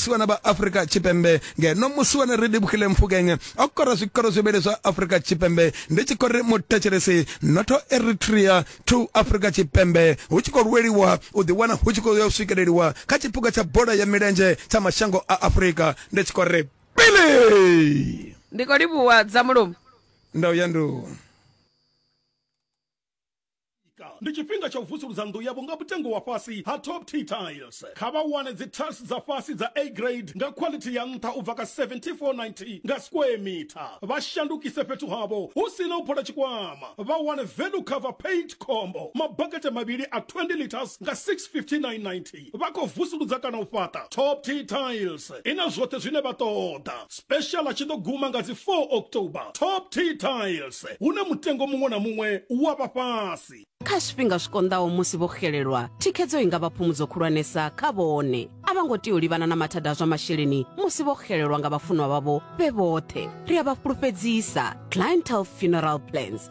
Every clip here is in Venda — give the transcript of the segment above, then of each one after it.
vhasiwana vha afurika tshipembe ngeno musiwana ri livhukile mfukeng o kora zwikoro zwivhili zwa afurika tshipembe ndi tshi khou ri muthetshelesi notho eritrea to afurika tshipembe hu tshi khou lweliwa u ḓiwana hu tshi khou ya u swikeleliwa kha tshiphuga tsha bola ya milenzhe tsha mashango a afurika ndi tshi khou ri pili ndi khou livhuwa dza mulomo ndau ya ndu ndi tshifhinga tsha u vusuludza nnḓu yavho nga mutengo wa fhasi ha top t tiles kha vha wane dzi tiles dza fhasi dza a grade nga quality ya nṱha u bva ka 7490 nga square meter vha shandukise fhethu havho hu si na u phola tshikwama vha wane value cover paint combo mabakete mavhili a 20 liters nga 65990 vha khou vusuludza kana u fhaṱa top t tiles i na zwoṱhe zwine vha ṱoḓa special a tshi ḓo guma nga dzi 4 october top t tiles hune mutengo muṅwe na muṅwe wa vha fhasi kha zwifhinga zwi konḓaho musi vho xelelwa thikhedzo i nga vha phumudzo khulwanesa kha vhone a vha ngo tea u livhana na mathada a zwa masheleni musi vho xelelwa nga vhafunwa vhavho vhe vhoṱhe ri a vha fhulufhedzisa clientele funeral plans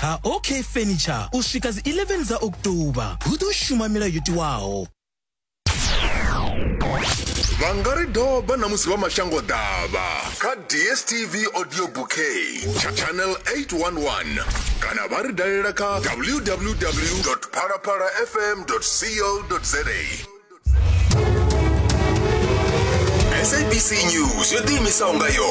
ha OK Furniture u swika dzi 11 dza October. Hu ḓo shuma milayo yo tiwaho. vha nga ri doba na musi vha mashango ḓavha kha dstv audio bouquet tsha channel 811 kana vha ri dalela kha www phalaphala fm co za sabc news yo ḓiimisaho nga yone